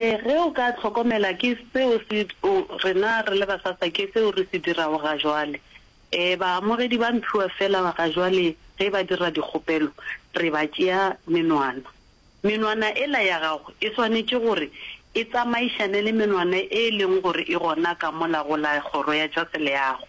Ee, ge o ka hlokomela, ke seo se, o, rena re le basasa, ke seo re se dirago gajwale. Ee, baamogedi ba mphiwa feela gajwale, ge ba dira dikgopelo, re ba tšea menwana. Menwana ela ya gago e swanetše gore e tsamaišane le menwana e e leng gore e gona ka mola go la Kgoro ya tša Seleago.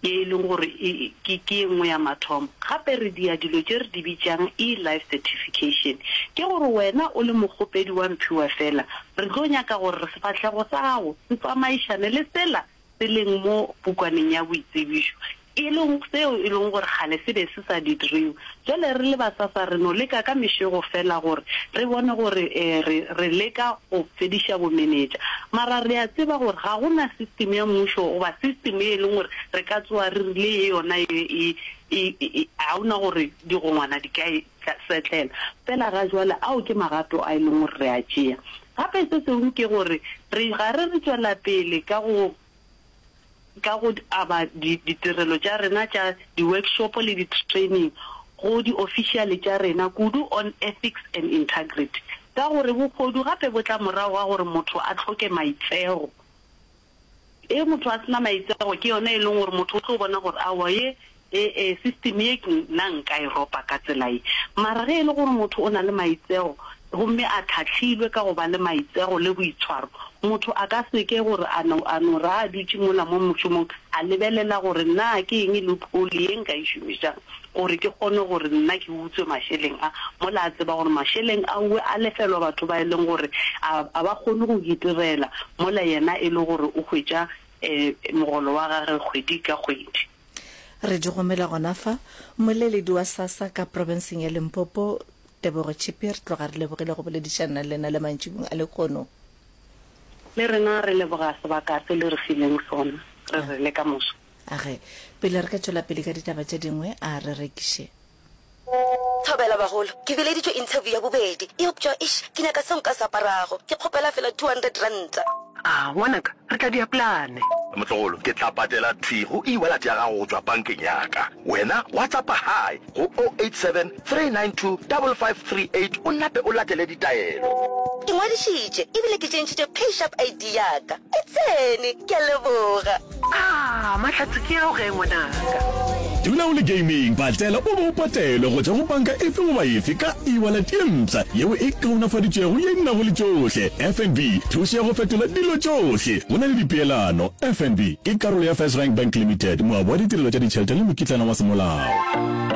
ye e lego gore ke ke ye nngwe ya mathomo. Gape re dia dilo tše re di bitšang e-life certification. Ke gore wena o le mokgopedi wa mphiwa feela, re tlo nyaka gore sefahlego sa gago se tsamaišane le sela se leng mo pukwaneng ya boitsebišo, e lego seo e lego gore kgale se be se sa didriwe. Bjale re le basasa re no leka ka mešego feela gore re bone gore re, re leka go fediša bomenetša. Mara re a tseba gore ga go na system ya mmušo goba system ye e leng gore re ka tsoga re rile ye yona ye e, e, e, e, ga go na gore digongwana di ka e setlela. Feela ga jwale ao ke magato a e leng gore re a tšea. Gape se sengwe ke gore re, ga re re tšwela pele ka go ka go aba di, ditirelo tša rena tša di-workshopo le di-training go diofisiale tša rena kudu on ethics and integrity, ka gore bohodu gape bo tla morago ga gore motho a hloke maitseo. Ge motho a se na maitseo, ke yona e leng gore motho o tlo bona gore aowa ye E-e, system ye ke nna nka e ropa ka tsela ye, mara ge e le gore motho o na le maitseo gomme a tlhahlilwe ka go ba le maitseo le boitshwaro, motho a ka se ke gore a no, a no re ha a dutše mola mo mošomong a lebelela gore na ke eng loophole ye nka e šomišang gore ke kgone gore nna ke utswe mašeleng a, mola a tseba gore mašeleng ao a lefelwa batho ba e leng gore a, a ba kgone go itirela mola yena e le gore o hwetša um mogolo wa gagwe kgwedi ka kgwedi. Re di romela gona fa. Mmoleledi wa SASSA ka profenseng ya Limpopo, Tebogo Chippie, re tloga re lebogile go boledišanna le lena le mantšibung a lekhono. Le rena re leboga sebaka se le re fileng sona. Re re le ka moso. A re, pele re ka tšwela pele ka ditaba tše dingwe, a re rekiše. Thobela bagolo, ke bileditšwe interview ya bobedi, eupša eish ke nyaka seo nka se aparago, ke kgopela fela two hundred ranta. A, ngwanaka, re tla dia plane. Motlogolo, ke tla patela thwi go e-wallet ya gago go tšwa bankeng ya ka. Wena WhatsAppa Hi go o eight seven three nine two double five three eight o nape o latele ditaelo. Ke ngwadišitše ebile ke tšentšhitše PayShap ID ya ka. E tsene! Ke a leboga. Aah Mahlatse ke ao ge ngwanaka. Dula o le gaming patlela o bo o patelwe go tšwa go banka efe goba efe ka e-wallet ye mpsha yeo e kaonafaditšwego ye e nago le tšohle. FNB, thušo ya go fetola dilo tšohle go na le dipeelano. FNB ke karolo ya FirstRand Bank Limited, moabi wa ditirelo tša ditšhelete le mokitlana wa semolao.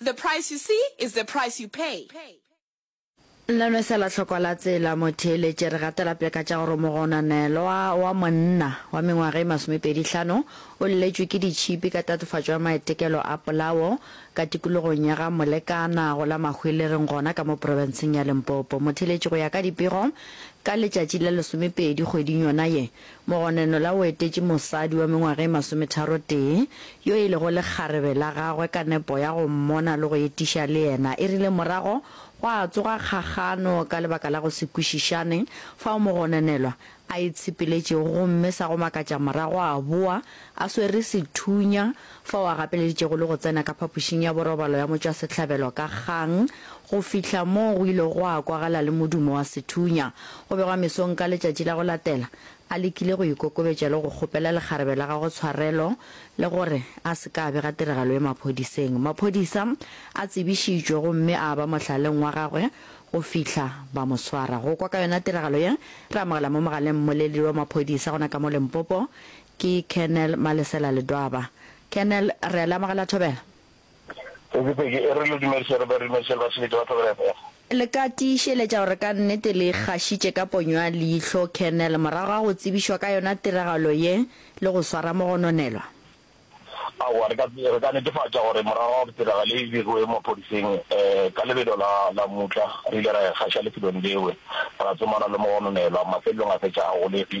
The price you see is the price you pay. Nna nwe sela hlokwa la tsela motheeletše re gatela peka tša gore mogonanelwa wa monna wa mengwaga e masomepedi hlano o lletšwe ke ditšhipi ka tatofatšo ya maetekelo a polao ka tikologong ya ga Molekana go la Mahwelereng gona ka mo profenseng ya Limpopo. Motheeletši go ya ka dipego ka letšatši la lesomepedi kgweding yona ye Mogonenola o etetše mosadi wa mengwaga e masometharotee yo e lego lekgarebe la gagwe ka nepo ya go mmona le go etiša le yena e rile morago gwa tsoga kgagano ka lebaka la go se kwešišane fao mogonenelwa a itshepeletšego gomme sa go makatša morago a boa a swere sethunya fao a gapeleditšego le go tsena ka phapošing ya borobalo ya motšwasehlabelo ka kgang, go fihla moo go ilego gwa kwagala le modumo wa sethunya. Go begwa mesong ka letšatši la go latela, a lekile go ikokobetša le go kgopela lekgarebe la gagwe tshwarelo le gore a se ka a bega tiragalo ye maphodiseng. Maphodisa a tsebišitšwe gomme a ba mohlaleng wa gagwe go fihla ba mo swara. Go kwa ka yona tiragalo ye, re amogela mo mogaleng mmoleledi wa maphodisa gona ka mo Limpopo, Ke Colonel Malesela Ledwaba. Colonel, re a le amogela Thobela. Peki, Peki, e re le dumedise re be re dumedise le basebetsi ba Thobela FM. Le ka tiišeletša gore ka nnete le ikgašitše ka ponyo ya leihlo, Colonel, morago ga go tsebišwa ka yona tiragalo ye le go swara mogononelwa? Aowa, re ka, re ka netefatša gore morago ga gore tiragalo ye e begiwe maphodiseng, ka lebelo la, la mutla, re ile ra ikgaša lefelong leo, ra tsomana le mogononelwa, mafelelong a fetša a golegile.